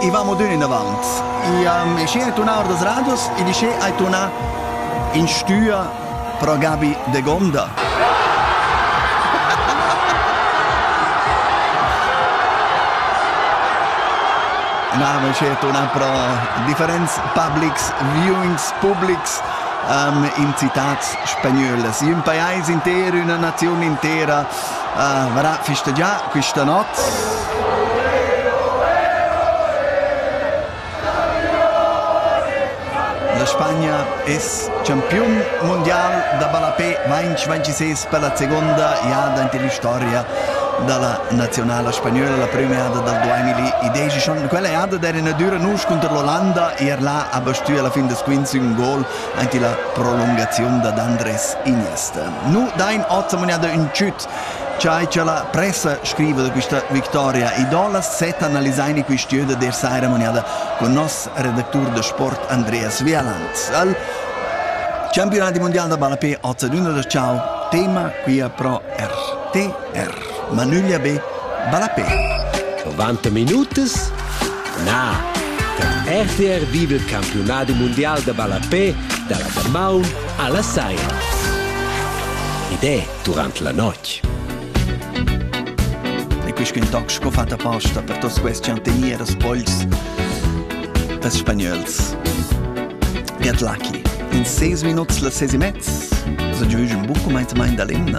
e vamo dun inavant. Iam e scena turnà or das radios e di che hai turnà in stüa pro Gabi de Gonda. Na, ma c'è una pro differents publics, viewings, publics um, in citats spagnolas. In paese intero, una nazione intera Uh, varà, festegià questa notte. La Spagna es campiun mondial da ballapè 2026 per la seconda jada in l'historia da la nazionala spagnola, la prima jada dal 2010. Quella jada d'era una dura nusch contro l'Olanda, er là ha bastù alla fin des quints un gol Anche la prolungaziun dad Andres Iniesta. Nu dain hoz amugnada ün tschüt chai cha la pressa scriva da quista victoria. Idola set analisain i quist'üa da der saira amugnada con nos redactur da sport Andreas Vialand. Al Campionati mondial da ballapè hoz adüna da ciao, tema quia pro RTR. Ma nüglia be, ballapè. 90 minutas? Na! Per RTR viva il campionadi mondial da ballapè dalla damaun alla saira. Ed è durante la notte. E questo intox che ho fatto apposta per tutti questi antenir spoils des spagnöls. Get lucky. In 6 minuti la 6 e mezza, so giugi un buco meinte mein da l'emna.